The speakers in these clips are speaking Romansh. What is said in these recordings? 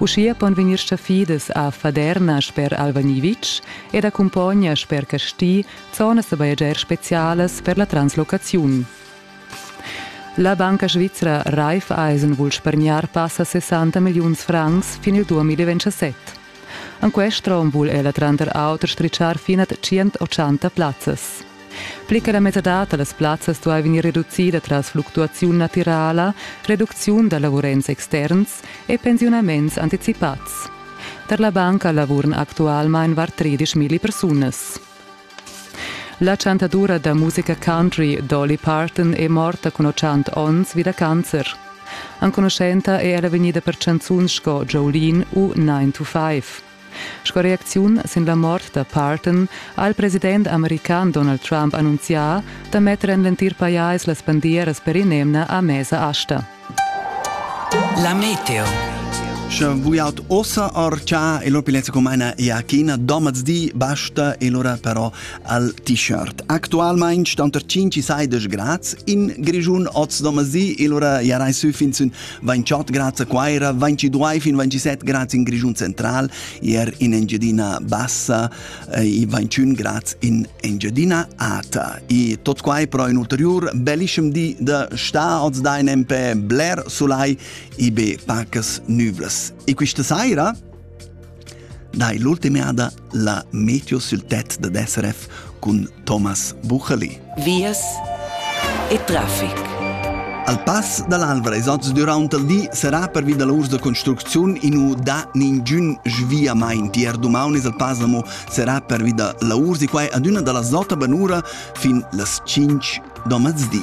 Uschia pon vegnir staffidas a Faderna sper Alvagniwitsch ed a Cumpogna sper Casti zonas da bajegiar spezialas per la translocaziun. La banca svizra Raiffeisen vul spargnar passa 60 milliuns francs fin il 2027. En quest rom vul ella tranter auter stritschar fin a 180 plazzas. Pli che la mesadad da las plazzas duai vegnir reducida tras fluctuaziun natirala, reducziun da lavurents externs e pensiunaments anticipads. Tar la banca lavuran actualmain var 13 milli persunas. La chantadura da musica country Dolly Parton è morta cun 80 onns vi da cancer. Enconuschenta è ella vegnida per chanzuns sco Jolene u 9 to 5. Sco reacziun sin la mort da Parton ha il president american Donald Trump annunzià da metter en l'entir pajais las bandieras per in'emna a mesa asta. La meteo. Sche vuiaut ossa arca e l'opilezza comana e a china domaz di basta e lora però al t-shirt. Actualmein stand er 5 saides grads in Grischun oz domaz di e lora jarai sü fin sün 28 grads a Quaira, 22 fin 27 grads in Grischun central, ier in Engiadina bassa e eh, 21 grads in Engiadina ata. E tot quai però in ulterior bellischem di da sta oz da in empe bler solai ibe pacas nuvras. E questa saira dai l'ultima ada la meteo sul tet da SRF cun Thomas Bucheli. Vias e traffic. Al pass dall'Alvra ils oz durant il di serà pervi da lavurs da construcziun inu da ningün sviamaint. Ier dumaunis il pass amo serà pervi da lavurs e quai adüna dalla zota banura fin las 5 do mezzdi.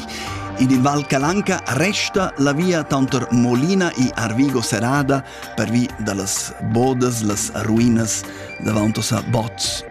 In il Val Calanca resta la via tanter Molina e Arvigo serrada pervi da las bodas, las ruinas davantos a Bots.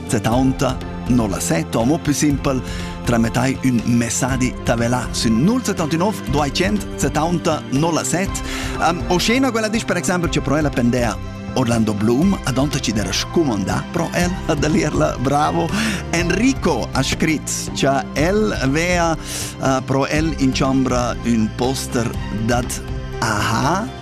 Setaunta non la set, o mo più simpel, trametai un messadi tavelà sün 079 270 07. Um, o scena quella disch per esempio che pro ella pendea Orlando Bloom, ad onta ci dera scumondà pro el ad alirla, bravo. Enrico ha scrit che el vea uh, pro el in ciambra un poster dat aha